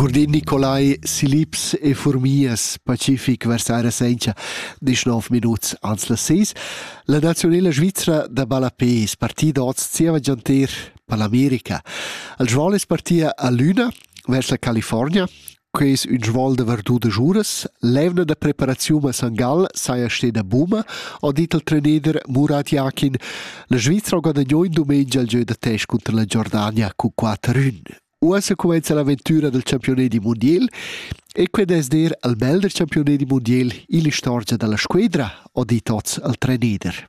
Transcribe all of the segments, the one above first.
Curdin Nicolai, Silips e Furmias, Pacific vers aira senza 19 minuts ans las 6. La nazionala svizra da ballapé es partida oz zieva gianter per l'America. Il Joel es partia a Luna, vers la California, Quei es ün svuol da vardudas uras. L'eivna da preparaziun a San Gall saja steda buna, ha dit il trainer Murat Jakin. La Svizra ha guadagno in dumengia il gieu da test cunter la Giordania cun quatter ün. Uossa cumenza l'avventura del campiunedi mondial e qued es der il melder campiunedi mondial illa istorgia da la squedra, ha dit oz il trainer.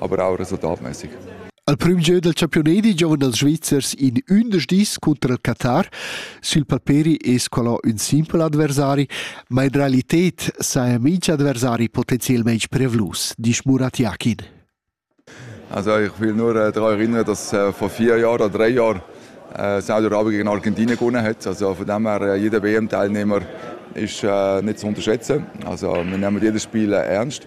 a brauras e dameisig. Al prüm gieu dal champiunedi giovan els Svizzers in ündesch dis cunter il Qatar. Sul paperi es qualà ün simpel adversari, ma in realited saja minch adversari potenzielmaing prevlus, disch Murat Yakin. Also ich will nur äh, daran erinnern, dass äh, vor vier Jahren oder drei Jahren äh, Saudi-Arabien gegen Argentinien gewonnen hat. Also von dem her, äh, jeder WM-Teilnehmer ist äh, nicht zu unterschätzen. Also wir nehmen jedes Spiel äh, ernst.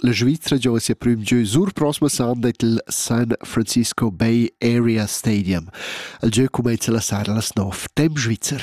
La Svizra gioga sia prüm gieu sur proxima sonda i'l San Francisco Bay Area Stadium. Il gieu cumainza la sera las nov temp svizzer.